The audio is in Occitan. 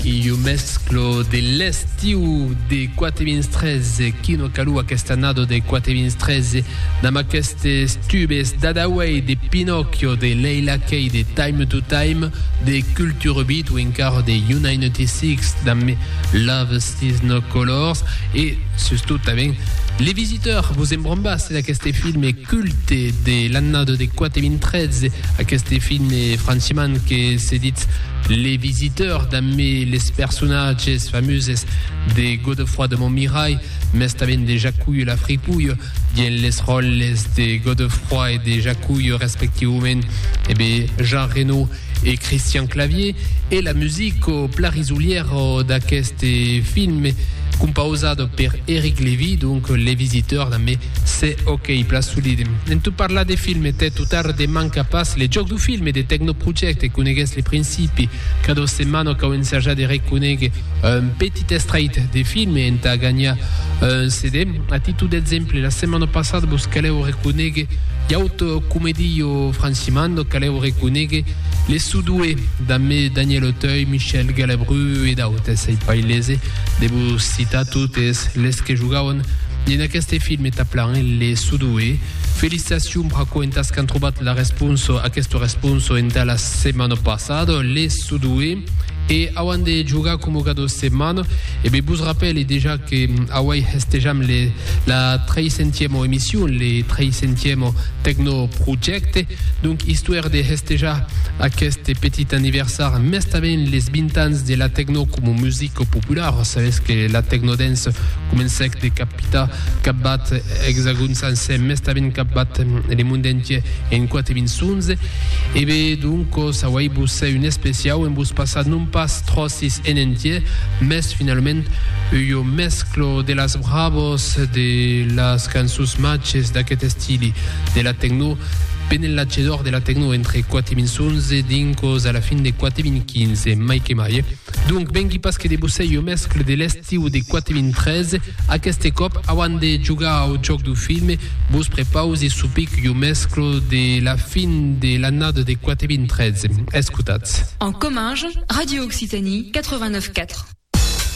Iu mesclo de l'estiu de 4.013, qui no calu aquesta annada de 4.013, damb aquestes tubes d'Adaway, de Pinocchio, de Leila Kay, de Time to Time, de Culture Beat o encara de Unitnty Six damb Love Sees No Colors e, sustot tanben, Les Visiteurs, vos embrombasse d'aqueste filme culte de l'annada de 4.013, aqueste filme franchiman que se ditz Les Visiteurs, damb les personatges famuses de Godefroi de Montmirai, mès tanben de Jacullo la Fripouille, dient les ròles de Godefroi e de Jacullo respectivaument e be Jean Reno e Christian Clavier, e la music o pla risolièra d'aqueste film, compausada per Eric Lévy, donc Les Visiteurs, damb Se o qu'ei plan solid. En tot parlar de film e tèt o tard de manca pas le jòc do film e de Tecnoproject, coneguètz le principi. Cada setmana cau ensajar de reconéguer un petit estrait de film e entà ganhar un CD. A títol d'exemple, la setmana passada vos calèu reconéguer Yacht Comedy o Francimando, calèu reconéguer Les Sudoués damb Daniel Auteuil, Michel Galabru e d'autes. Ei pas ailese de vos citar totes les que jogauen En aqueste film e taplan en le sudoe. Felicitacion braco entas qu'an trobat la responso aqueste responso enta la setmana passada le sudoe e auan de jogar coma cada setmana e be vos rapele dejà que auai hestejam le la 300 emission le 300 tecno projecte donc histoire de hestejar aqueste petit anniversar mestaven les 20 ans de la tecno como musique popular sabes que la tecnodance Comencèc de capitar capbat Exagòn sancèr, mès tanben capbat le monde entier en quate vinçons. E be doncos auèi vos un especiau en vos passar non pas tròcis en entier, mès finalament ua mesclo de las bravos de las cançons matges d'aquest estili, de la tecno, ben en l'atge d'òr de la tecno entre quate vinçons e dincos a la fin de quate vinquinze, mai que mai. Donc vengui pas que de vos sei o mescle de l'estiu de 4013, aqueste còp auant de jogar au jòc du film, vos prepause su pic o mescle de la fin de l'annada de 4013. Escotatz. En Comminges, Radio Occitanie 89.4.